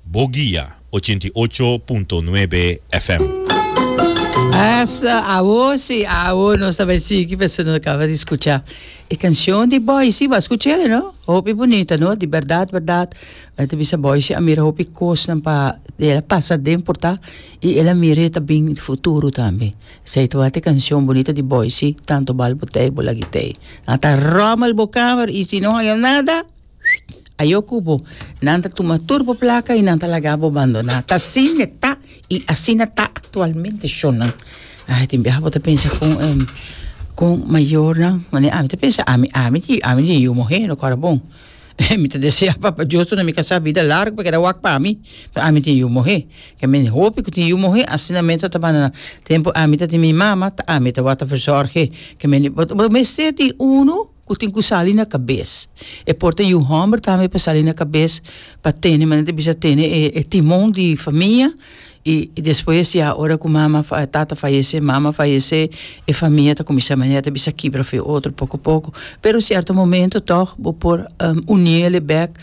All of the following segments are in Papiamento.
Bo guia ochenta i ocho punto nuebe FM. Esta awor si, awor nos ta bai sigui pasobra nos a caba di scucha e cancion di Boyce. Bo a scuch'e no? Hopi bunita no? Di berdad, berdad m'a ta bisa Boyce a mira hopi cosnan pa el a pasa den porta y el a mira e ta bin futuro tambe. Esey ta wak e cancion bunita di Boyce, Tanto bal bo tey, bo lag'e tey. Ata rommel bo kamer y si no haya nada, Ayo ku bo, nan ta tuma tur bo plaka i nan ta laga bo bandoná. Ta asin e ta i asina ta aktualmente shonnan. Ah, tin biaha bo ta pensa kon e kon mayornan, manera ami ta pensa, ami ami di ami di yu muhé no kòrda bon. Mi ta deseá Papa Dios tur na mi kasá bida largu pa keda wak pa mi, pasobra ami tin yu muhé. Ke men hopi ku tin yu muhé asina men ta ta bandoná. Tempu ami ta tin mi mama, ta ami ta wak ta verzòrg'é. Ke men di bo bo mester tin unu. ku tin ku sali na kabes. E por ta yu hòmber tambe pa sali na kabes pa tene manera ta bisa tene e e timon di famia i despues ya ora ku mama tata fayesé mama fayesé e famia ta kuminsá manera ta bisa kibra fu e otro poko poko pero sierto momento tog bo por uni el'e bèk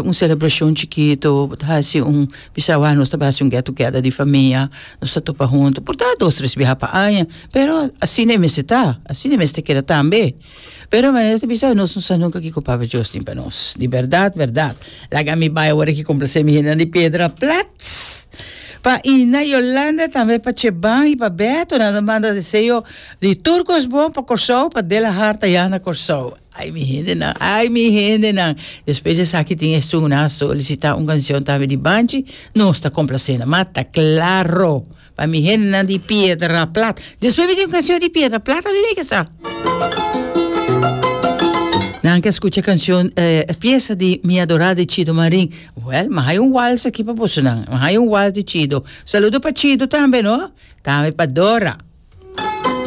un selebrashon chikito bo ta hasi un Bisawá nos ta bai hasi un get togeda di famia, nos ta topa huntu, por ta dos tres biaha pa aña, pero asina e mester ta, asina e mester keda tambe. Pero manera ta bisa nos no sa nunka kiko Papa Dios tin pa nos. Di bèrdat bèrdat, laga mi bai awor aki komplase mi hendenan di Piedra Plat, pa Ina, Yolanda, tambe pa Cheban i pa Beto nan ta manda deseo di tur kos bon pa Kòrsou, pa De La Harta ya na Kòrsou. Ay mi hendenan, ay mi hendenan. Despues di esaki tin esun a solicita un cancion tambe di Banchi, nos ta complacena mas, ta claro. Pa mi hendenan di Piedra Plat. Despues mi tin un cancion di Piedra Plat tambe mi ke sa. Nan ke scucha cancion, e pieza di Mi Adorá di Chido Marin. Well, mi haya un wals aki pa boso nan. Mi haya un wals di Chido. Saludo pa Chido tambe no, tambe pa Dora.